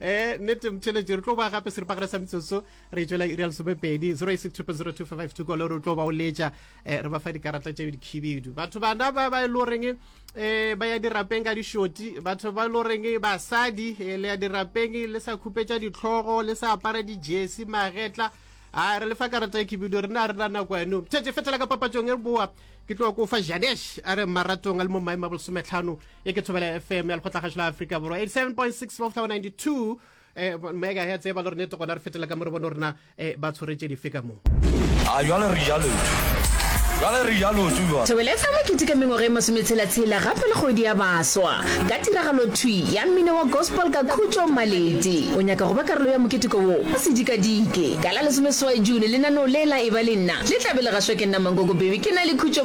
eh nete mtheletše re tlo ba gape seripagare sa metsotso re tswela irial somepedi 086 kole re tlo ba o letša eh, re ba fa dikarata tše dikhibidu batho bana ba ba e le goreng um eh, ba ya dirapeng ka dišoti batho ba e le goreng basadi eh, le ya dirapeng le sa khupetša ditlhogo le sa apara dijesi magetla a re lefa karata ya khibidu re na re na nako yano mtheletše fetela ka papatsong e re boa ke tlo ko fa janesh a re maratong a le mo maemo a bolesometlhano e ke thobela fm ya lekgotlagašo la aforika borwa 87.6 moftawa 92 eh, megahertz e ba le rone tokona re fetela ka mo re bone rona eh, ba tshwaretse dife ka moo a jale re jalo jale re jalo tsuwa thobela fa mokete ka mengwaga e masometshela-tshela gape le kgodi ya baswa ka tiragalo thwi ya mmino wa gospel ka khutšo maledi o nyaka go ba karolo ya moketeko wo o sedikadike ka la lesomeswai june lenaneo le la e ba le nna le tlabe le gašwa ke nna mangogo bebe ke na le khutšo